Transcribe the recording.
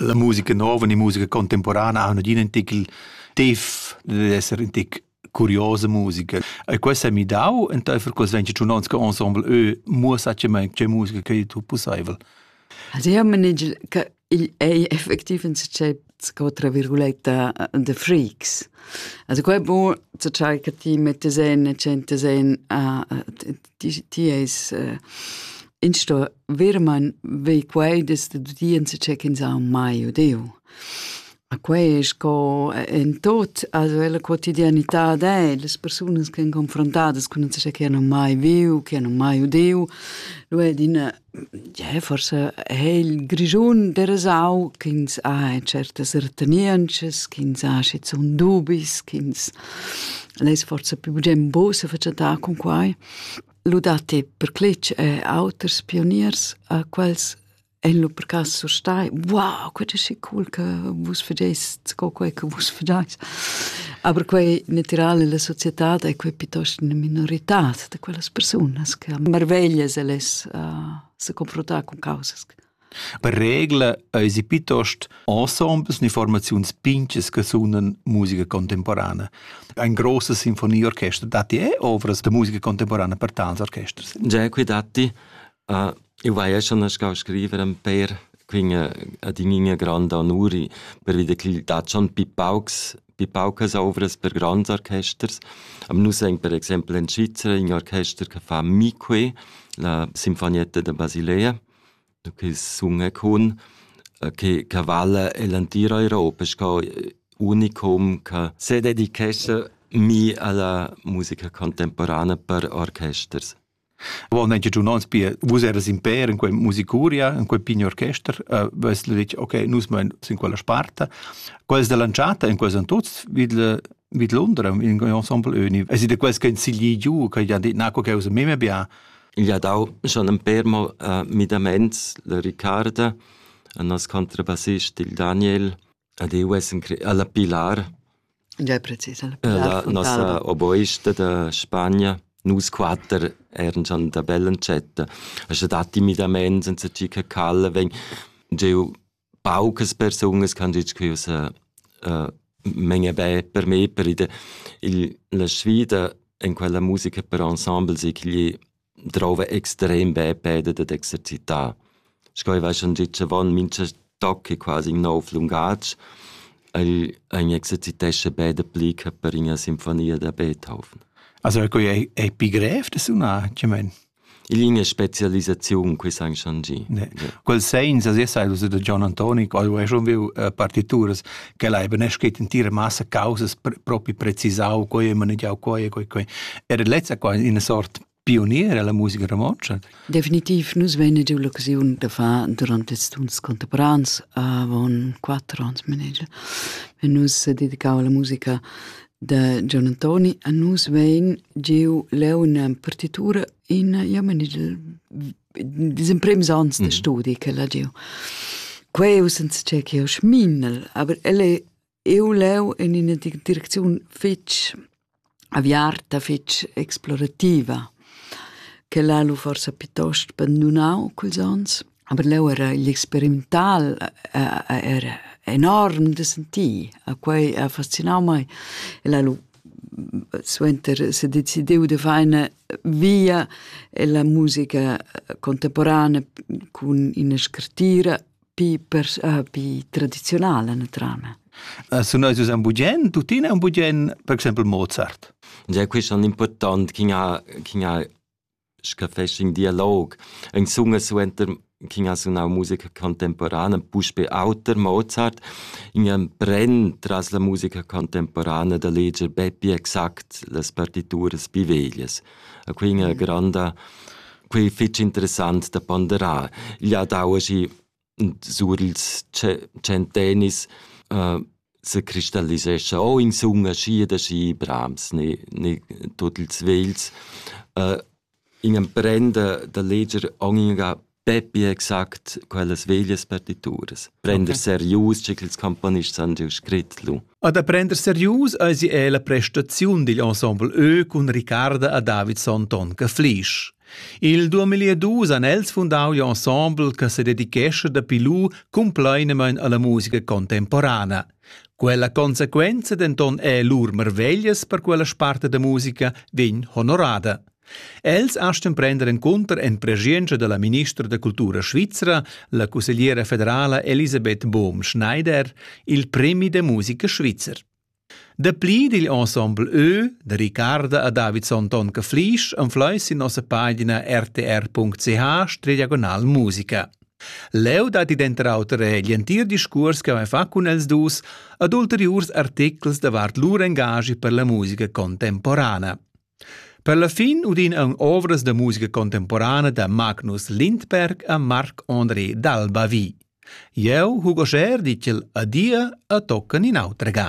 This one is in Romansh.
La musica nova e musica contemporana han adina in tic tif dad esser in tic curiosa musica. E questo ha mi dau enteifer quels 21 onns che ensemble eu muossatgemaing che musica che tu pussaivel. Also io manigel che igl ei effektiv in se sco tra virguletta de freaks. Also quei bu zu tschai che ti mettes en e centes en a ti ti es uh, in sto virman vei quei des de dudienza c'è che sa mai odeu. A quei è sco en tot, also la quotidianità de, le persone che hanno confrontato con non so che hanno mai viu, che hanno mai udeu, lo è din Ie, forsa ha il Grischun derasau ch'ins ha certas retenientschas, ch'ins ha schizun dubis, ch'ins less forsa pli bugen buca sefatschentar cun quai. Lu datti per cletg er auters pioniers a quels ein lu per cass surstai: «Wow, quei è schi cool che vus fageist sco quei che vus fagais». Aber quei natirale la societad ei quei piuttosto ina minoritad. da quellas persunas che marveglias el es uh, se confrontar con causas. Per regla eisi piuttost ensembles informaziuns pinches che sunan musica contemporana. Ein grossa sinfonieorchester datti eh ovras da musica contemporana per tals orchesters? Già qui datti Eu vaia schon nascau a scriver ün pêr, quinga adin'igna granda onuri pervi da ch'igl dat schon pi paucs pi paucas ouvras per grands orchesters. Am nus aint per exaimpel in Svizra ün orchester che fa Mi-que, la Sinfonietta da Basilea, che sunga cun, che che vala el entir Europa sco unicum che sededichescha mi a la musica contemporana per orchesters. Wo ne giu uns pia vus eras in per in quei musicuria, in quei pign orchester, uh, vess lu detg, okay, nus mein sin quella sparta. Quels dell'anchata in quels an tuts vid vid Londra in ensemble uni. Es de quels che in sigli giu che ja dit na co che us meme bia. Il ha dau schon un per mo uh, midaments la Riccarda, un nos contrabassist il Daniel, ad eu es alla Pilar La nossa oboista da Spagna, nus quatter eran già da bell'entschatta. Sche dat timidament senza tgi che calla vegn giu paucas persunas che han detg che io menge be per me, per ide. Il, la sfida en quella musica per ensemble sei ch'igl drouva extrem be peda dad exercitar. Sco ei va schon gitg avon, mincha toc è quasi in nov lungatg. El, ein exercitescha be dapli che per ina sinfonia da Beethoven. Also è quei è pi grev da sunar, che mein? Il linea specialisaziun qui san schon gi. Quel segns as essa il da John Antoni, qual è schon viu partituras quella ei beneschet intira massa causas propi precisau coi e manegiau coi e coi coi. Era lezza qua ina sort pionier alla musica romontscha. Definitiv, nus vein giu l'occasiun da far durante ils tuns contemporans avon quattro ans manegia. Nus dedicau alla musica de Gian Antoni a nus vein giu leu una partitura in ja manegia Dis imprims ans de mm. studi che l'ha giu. Queu senza che che ho schminel, aber el è eu leu in ina direcziun fitch aviarta, fitch explorativa, che l'ha lu forsa piuttosto bandunau culs ans, aber leu era l'experimental eh, eh, era enorm da sentir, a quei ha fascinau mai. E l'ha lu suenter se decidiu de far ina via ella musica contemporana cun ina scartira pi, per, uh, pi tradizionala na trama. Uh, sun eis un bugen, tuttina un bugen, per exempel Mozart. Già questo è importante, chi ha, chi ha Scha fest ün dialog, ün sun e suenter ch'in ha sunau musica contemporana, puspe auter Mozart, ün empren tras la musica contemporana da leger be pli exact las partituras pi veglias. A quei ina granda, quei fetg interessant da ponderar. Igl ha dau aschi sur ils tschentennis uh, se cristallisescha o insumma schi da schi brams ne, ne tut ils vels. Uh, in emprenda da leger ogni Peppi exact quellas veglias partituras. Prender okay. serius, che ils componists han giu scrit lu. A da prender serius eisi è la prestaziun digl ensemble Ö cun Ricarda a David Sonton che Flisch. Il 2002 han els fundau l'ensemble che se dedichesce dapi lu compleinemein alla musica contemporana. Quella conseguenza denton è lur marveglias per quella sparte da musica vegn honorada. Els astgan prender encunter en preschientscha dalla ministra da cultura svizra, la cussegliera federala Elisabeth Bohm-Schneider, il premi da musica svizzer. Dapli digl ensemble Ö da Ricarda a Davidson Tonka Flisch anfleis in nossa pagina rtr.ch diagonal musica. Leu dat id enter auter egl entir discurs che vai fa cun els dus ad ulteriurs articles davart lur engagi per la musica contemporana. Per la fin udin aunc ovras da musica contemporana da Magnus Lindberg e Marc André d'Albavi. Jeu hug oschè dir ch'el adia e toccan in autra ga.